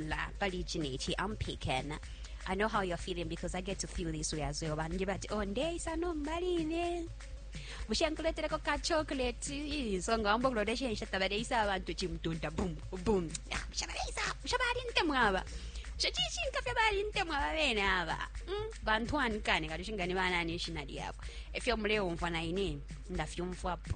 la pali ichi neichi i'm picking i know how you're feeling because i get to feel this way as well vanhu nje vati oh ndeisa nombaline bushe nkuletereko ka chocolate Ih, so nga wamba kulota shensha tabareisa abantu chimutunda bum bum Ah, bushe bareisa bushe barintemwa aba bushe chishinka fye barintemwa aba bene aba Mm, bantu anikane kati shingani banani ishina lyabo efyo muleumva naine ndafyumvapo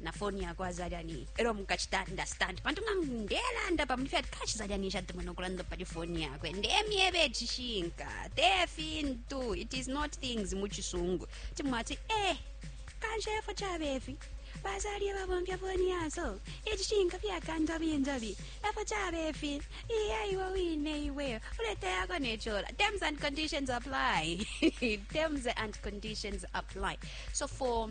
na foni yako azalani ero mukachita understand pantu nga ndelanda pa mlifya kashi zalani ishatemwe nokulanda pali foni yakwe ndemyebe chishinka te fintu it is not things muchisungu timwati eh kanshefo chabefi bazalye babomfya foni yazo ichishinka fyakanda binzabi efo chabefi iya iwe wine iwe uleta yako nechola terms and conditions apply terms and conditions apply so for